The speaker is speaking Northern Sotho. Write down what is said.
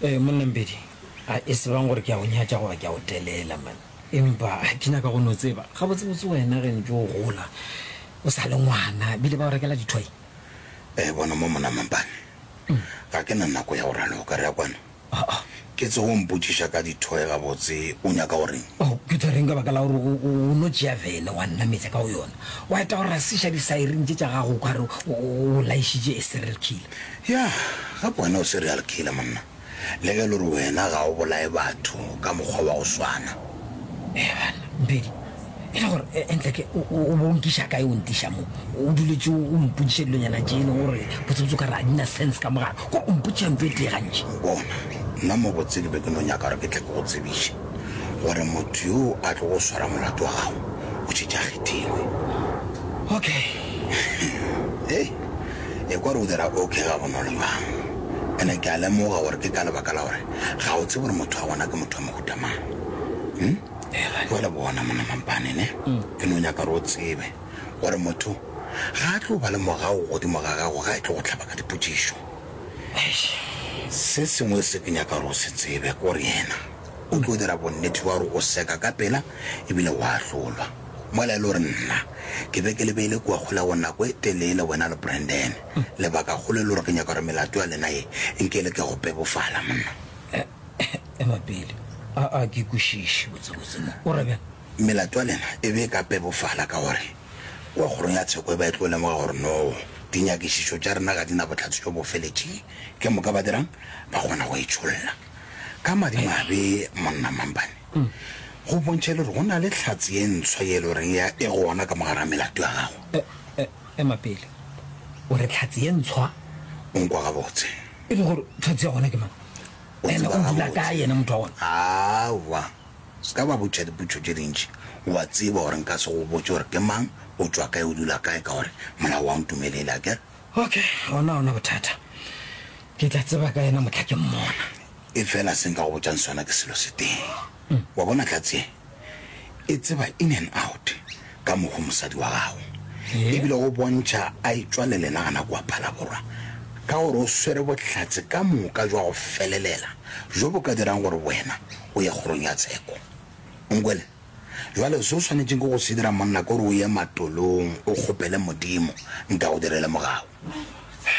Ee, monna Mpedi, a e se bang gore ke a go nyatša goba ke a go telela, man. Empa ke nyaka go no tseba, gabotsebotse wena ge ntše o gola o sa le ngwana, bile ba o rekela dithwai? Ee, bona mo, monna Mampane, ga ke na nako ya go raloka. Re ya kwano. Ke tsoge o mpotšiša ka dithoe gabotse o nyaka go reng? Oh, ke tshwereng ka baka la gore o, o, o no tšea vene wa nnametša ka go yona. Wa eta go rasiša disairini tše tša gago o ka re o, o, o laišitše a serial killer. Ya, gape wena o serial killer monna. Le ge e le gore wena ga o bolaye batho ka mokgwa wa go swana. Eya banna, Mphedi, e le gore e- entleke o o- o bonkiša kae o ntiša mo o duletse o mpotšiša dilonyana tše e leng gore botsebotse o ka re a di na sense ka mogare ko o mpotšiša mpe e tee gantši bona nna mo botsedi be ke no nyaka gore ke tle ke go tsebiše gore motho yo a tlo go swara molato wa gago o tšhetša kgethilwe okay e e kwa re o dira okay ga bonolo jwang ene ke a lemoga gore ke ka lebaka la gore ga o tsebe gore motho wa gona ke motho wa mohutamang jale bona mona mampane ne ke no nyaka re o tsebe gore motho ga a tlo ba le mogao godimo ga gago ga e tlo go tlhaba ka dipotsišo se sengwe se ke nyaka re o se tsebe kore yena o tlo dira bonnete wa gore o seka ka pela ebile wa ahlolwa mola e le gore nna ke be ke lebeile kua kgolago nako e telele wena le brandon lebaka kgolo e le gore ke nyaka gore melato ya lena ye nke le ke go pebofala monna Ema pele. A a ke kwešiše botsebotse mo. O ra bjang? Melato ya lena e be e ka pebofala ka gore kua kgorong ya tsheko e ba e tlo lemoga gore no dinyakišišo tša rena ga di na bohlatse bjo bo feletšeng. Ke moka ba dirang? Ba kgona go e tšholla. Ka madimabe, Monna Mampane, go bontšha e le gore go na le hlatse ye ntshwa ye e le goreng ya e gona ka mogare ga melato ya gago. E, e, ema pele. O re hlatse ye ntshwa? O nkwa gabotse. E le gore hlatse ya gona ke mang? o ene tseba o dula gabotse. kae ene motho wa gona aowa se ka ba botšha dipotšo tše dintši wa tseba gore nka se go botse gore ke mang o tšwa kae o dula kae ka gore molao wa ntumelele a kere okay gona ona bothata ke tla tseba ka ena motlha ke mmona e fela se nka go botšang sona ke selo se teng Wa bona katse ye e tseba in and out ka mogo mosadi wa gago e bile go bontšha a e tšwa le lena gana kua Phalaborwa ka gore o swere bohlatse ka moka jwa go felelela bjo bo ka dirang gore wena o ye kgorong ya tsheko. O nkwele? Jwale se o swanetšeng ke go se dira monna ke gore o ye matolong o kgopele Modimo nka go direle mogau.